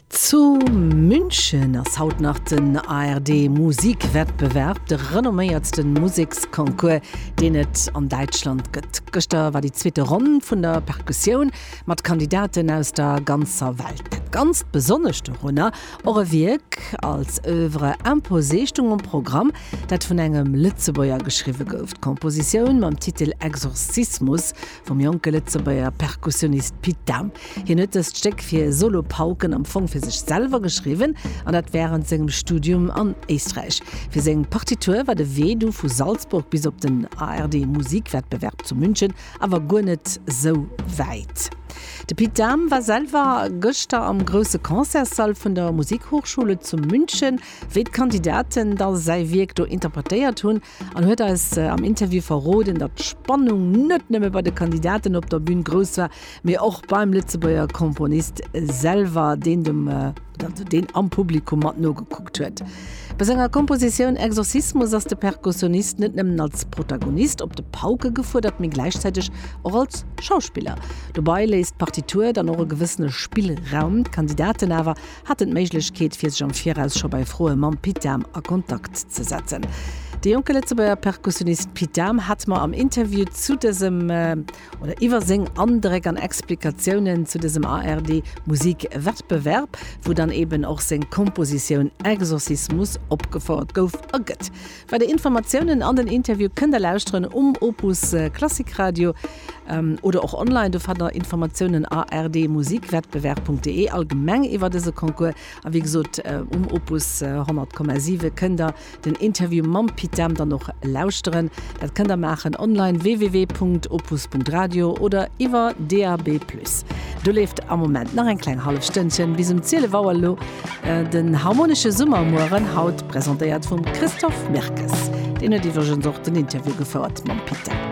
Zu München ass haut nach den ARD-Musikwettbewerb, de renomméiertsten Museksconcours, deen et an Däitschland gëtt. Gëschter war déi zweete Ronn vun der Perkussioun mat Kandidaten aus der ganzer Welt. Ganz besonnesch dorunner och e Wierk als Oeuvre imposée stung um Programm, dat vun engem Lëtzebuerger geschriwwe gouf. D'Kompositioun mam Titel Exorzismus Vum jonke Lëtzebuerger Perkussionist Pit Dahm. Hien huet dëst Stéck fir Solopauken am Fong fir sech selwer geschriwwen, an dat wärend sengem Studium an Éisträich. Fir seng Partitur war de Wee du vu Salzburg bis op den ARD-Musikwettbewerb zu München awer guer net sou wäit. De Pit Dahm war selwer gëschter am grousse Concertssall vun der Musikhochschule zu München, wéi d'Kandidaten da säi Wierk do interpretéiert hunn. En huet eis am Interview verroden, datt d'Spannung net nëmme bei de Kandidaten op der Bün grouss war, mee och beim Lëtzebuerger Komponist selwer, deen dem, also deen am Publikum mat nogekuckt huet. Bei senger Kompositioun Exorcismus ass de Perkussionist net nëmmen als Protagonist op de Pauke gefuerdert, mee gläichzäiteg och als Schauspiller. Dobei léisst d'Partitur dann och e gewëssene Spillraum, d'Kandidaten awer haten d'Méiglechkeet fir sech am Viraus scho bei Froe mam Pit Dahm a Kontakt ze setzen. De jonke Lëtzebuerger Perkussionist Pit Dahm hat mer am Interview zu dësem oder iwwer seng Andréck an Explikatiounen zu dësem ARD Musik Wettbewerb, wou dann eben och seng Kompositioun Exorcismus opgefouert gouf a gëtt. Weider Informatiounen an den Interview kënnt der lauschteren um Opus Klassik Radio oder och online. Do fannt der Informatiounen a rdmusikwettbewerb.de allgemeng iwwer dëse Concours. A wéi gesot um Opus 100,7 kënnt der den Interview mam Pit Dahm dann och lauschteren. Dat kënnt der maachen online, www.opus.radio oder iwwer DAB+. Do leeft am Moment nach eng kleng hallef Stënnchen bis um 12 Auer. Elo Den harmonesche Summermueren haut presentéiert vum Christophe Mirkes. Deen huet iwwregens och den Interview gefouert mam Pit Dahm.